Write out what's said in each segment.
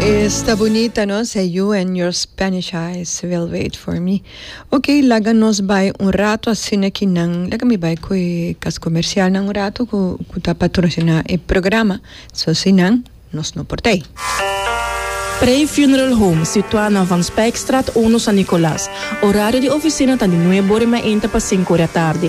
Esta bunita no se you and your Spanish eyes will wait for me. Ok laga nos bai un rato asina ki nan laga mi bai cu e cas comercial nan un rato cu cu ta patrocina e programa so si nan nos no por tei. Prey Funeral Home, situa na Van Spijkstraat uno San Nicolas. Horario di oficina ta di nuebe ora y mi a inta pa cinco ora tardi.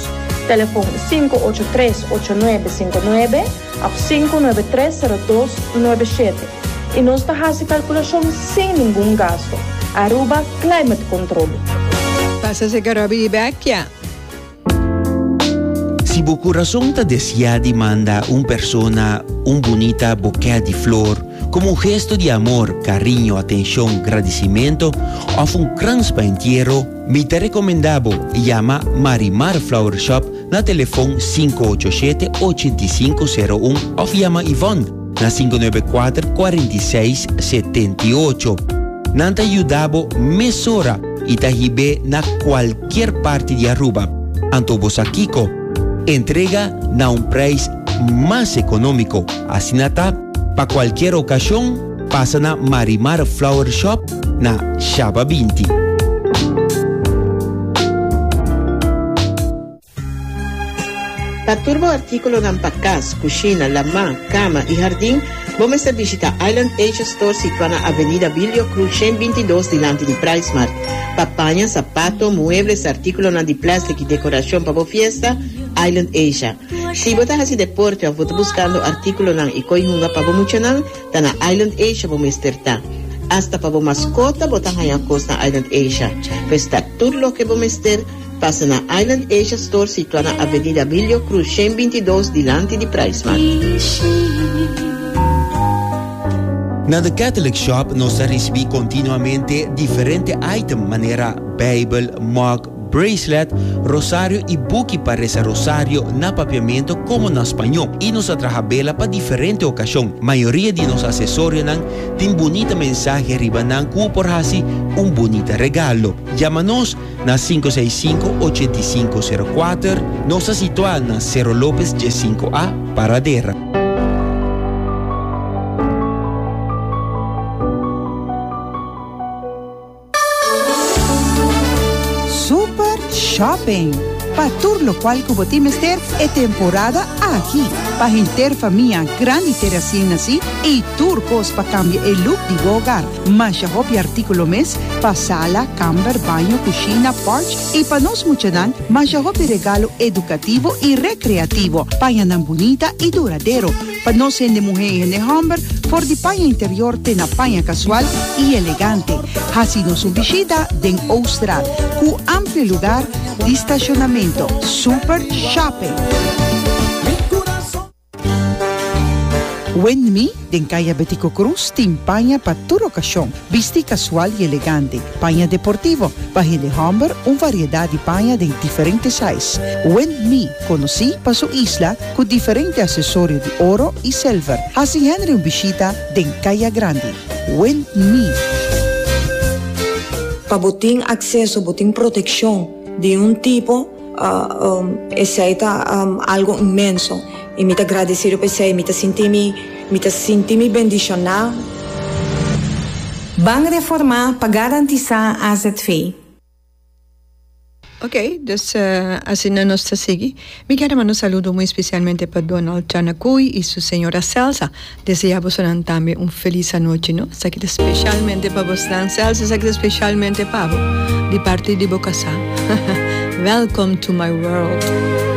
Telefon sinku ocho tres ocho nuebe sinku nuebe òf sinku nuebe tres sero dos nuebe shete i nos ta hasi kalkulashon sin ningun gastu. Aruba Climate Control. Pasa si ke Robbie di Becchia. Si bo curason ta deseá di manda un persona un bunita bokè di flor como un gesto di amor, cariño, atencion, gradicimento of un krans pa entiero, Mi ta recomenda bo yama Marimar Flower Shop na telefon sinku ocho shete ochenta i sinku sero un of yama Yvonne na sinku nuebe kuater kuarenta i seis setenta i ocho. Nan ta yuda bo mesora i ta hib'é na kualkier parti di Aruba. Anto bo sa kiko? Entrega na un prijs mas economico, asina ta pa kualkier ocasion. Pasa na Marimar Flower Shop na Shaba binti. Pa tur bo artíkulonan pa kas, kushina, lamá, kama i hardin, bo mester bishitá Island Asia Store situá na Avenida Bilio Cruz shen binti dos dilanti di Pricemart. Pa paña, sapato, muebles, artíkulonan di plèstik i dekorashon pa bo fiesta, Island Asia. Si bo ta hasi deporte òf bo ta buskando artíkulonan i koi hunga pa bo muchanan, Ta na Island Asia bo mester ta. Asta pa bo maskota bo ta haña kos na Island Asia. Pues ta tur loke bo mester, pasa na Island Asia Store situá na Avenida Abilio Cruz shen binti dos dilanti di Price Mart. Na The Catholic Shop nos ta ricibi continuamente diferente item manera Bijbel, mug, bracelet, rosario y buki pa reza rosario na papiamento como na spaño y nos a traha bela pa diferente ocasion. Mayoria di nos acesorianan tin bunita mensahe riba nan cu u por haci un bunita regalo. Yama nos na sinku seis sinku ochenta i sinku sero kuater, nos ta situa na Cerro Lopez dies sinku A, Paradera. Super Shopping, Pa tur lokual ku bo tin mester e temporada aki. Pa henter famia grandi te resien nasi i tur kos pa kambia e luk di bo ogar. Masha hopi artíkulo mes pa sala, kamber, baño, kushina, pòrch i pa nos muchanan masha hopi regalo edukativo i rekreativo. Paña nan bunita i duradero. Pa nos hende muhé i hende hòmber, for di paña interior te na paña kasual i elegante. Hasi nos un bishita den Oustra ku amplio lugar di stashonamentu, super shòping. Windme den Kaya Betico Cruz tin paña pa tur okashon, bistí kasual i elegante, paña deportivo, pa hende hòmber un variedat di paña den diferente sais. Windme, konosí pa su isla, cu diferente accesorio di oro y silver, haci Henry un bishita den Caya Grandi. Wind Me. Pa bo tin acceso, bo tin proteccion di un tipo, esey ta algo inmenso y mi ta gradecido pa esey, mi ta sinti mi, mi ta sinti mi bendiciona. Ban Reforma pa garantisa azv. Ok dus asina nos ta sigui. Mi kere manda un saludo muy especialmente pa Donald Chanacuy y su señora Celsa. Desea bosonan tambe un feliz anochi no. Esaki ta specialmente pa bosnan Celsa esaki ta specialmente pa bo di parti di bo casa. Welcome to my world.